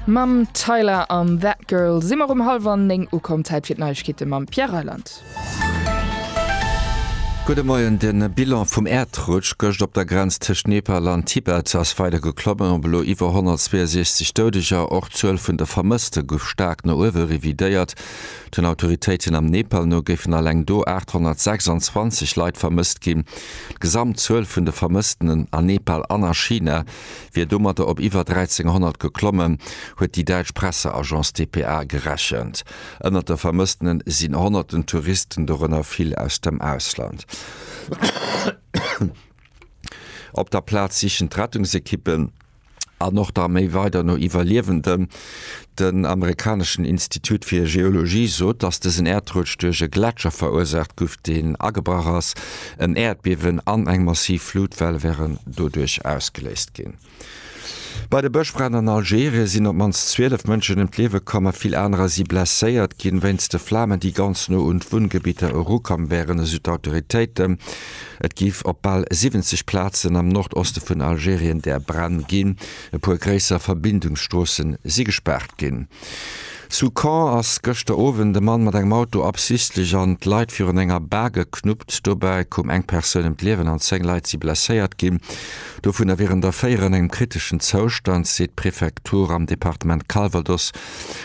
Mam Tyla an That Girl si mer um hallwer 9 ukomm. Zäit fir d'Neiegkeete mam Pierre Reyland. Gudde Moien, De Bilan vum Äerdrutsch gëscht op der Grenz tëscht Nepal an Tibet ass weider geklommen, op elo iwwer 162 Doudeger. Och d'Zuel vun de Vermësste gouf staark no uewe revidéiert. Den Autoritéiten am Nepal no géifen alleng do 826 Leit vermësst ginn. D'Gesamtzuel vun de Vermëssten a Nepal an a China wier domatter op iwwer 1.300 geklommen, huet déi däitsch Presseagence dpa gerechent. Ënnert de Vermëssene sinn honnerten Touristen, dorënner vill aus dem Ausland. Op der Plaz sichen d'Rettungsekippen an och d'Arméi weider no Iwwerliewenden. Den amerikaneschen Institut fir Geologie sot, datt dësen Äerdrutsch duerch e Gletscher verursaacht guff, deen agebrach ass. En Äerdbiewen an eng massiv Flutwell wären doduerch ausgeléist ginn. Bei de Bëschbränn an Algerien sinn op d'mannst 12 Mënschen ëm d'Liewe komm a vill anerer si blesséiert ginn, wéinst de Flamen, déi ganz no un d'Wunngebidder erukomm wären, esou d'Autoritéiten. Et géif op bal 70 Plazen am Nordoste vun Algerien där Bränn ginn. E puer gréisser Verbindungsstroosse si gespaart ginn. Zu Caen ass gëschter Owend e Mann mat engem Auto absichtlech an d'Leit virun enger Bar geknuppt. Dobäi koum eng Persoun ëm d'Liewen an 10 Leit si blesséiert ginn, dovunner wieren der 4 an engem kriteschen Zoustand, seet d'Prefektur. Am Departement Calvados.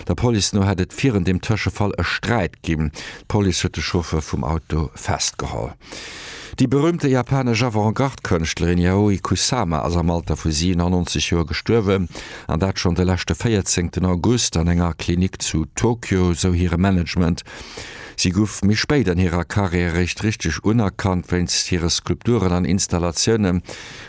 Der Police no hätt et virun deem Tëschefall e Sträit ginn. D'Police huet de Chauffeur vum Auto festgeholl. Déi berüümte japanesch Avant-Garde-Kënschtlerin Yayoi Kusama ass am Alter vu 97 Joer gestuerwen, an dat schonn de leschte 14 August an enger Klinik zu Tokio, sou hire Management. Si gouf méi spéit an hirer Karriär eréischt richteg unerkannt wéinst hire Skulpturen an Installatiounen.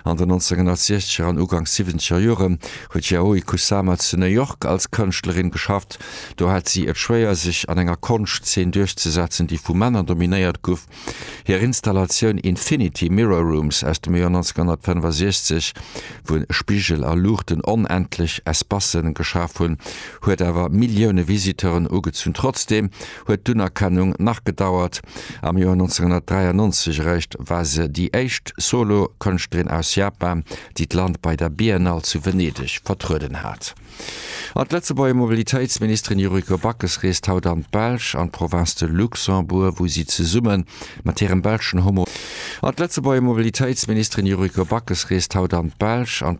An den 1960er an uganks siwwenzeger Jore huet d'Yayoi Kusama zu New York als Kënschtlerin geschafft. Do hat si et schwéier, sech an enger Konschtzeen duerchzesetzen, déi vu Männer dominéiert gouf. Hir Installatioun Infinity Mirror Rooms aus dem Joer 1965, wou Spigel a Luuchten onendlech Espace geschaf hunn, huet awer Millioune Visiteuren ugezunn. Trotzdeem huet d'Unerkennung nach gedauert. Am Joer 1993 eréischt war se déi éischt Solo-Kënschtlerin aus Japan, déi d'Land bei der Biennale zu Venedeg vertrueden hat. An d'Lëtzebuerger Mobilitéitsministerin Yuriko Backes reest haut an d'Belsch, an d'Province de Luxembourg, wou si zesumme mat hirem belschen Homo. An d'Lëtzebuerger Mobilitéitsministerin Yuriko Backes reest haut an d'Belsch, an.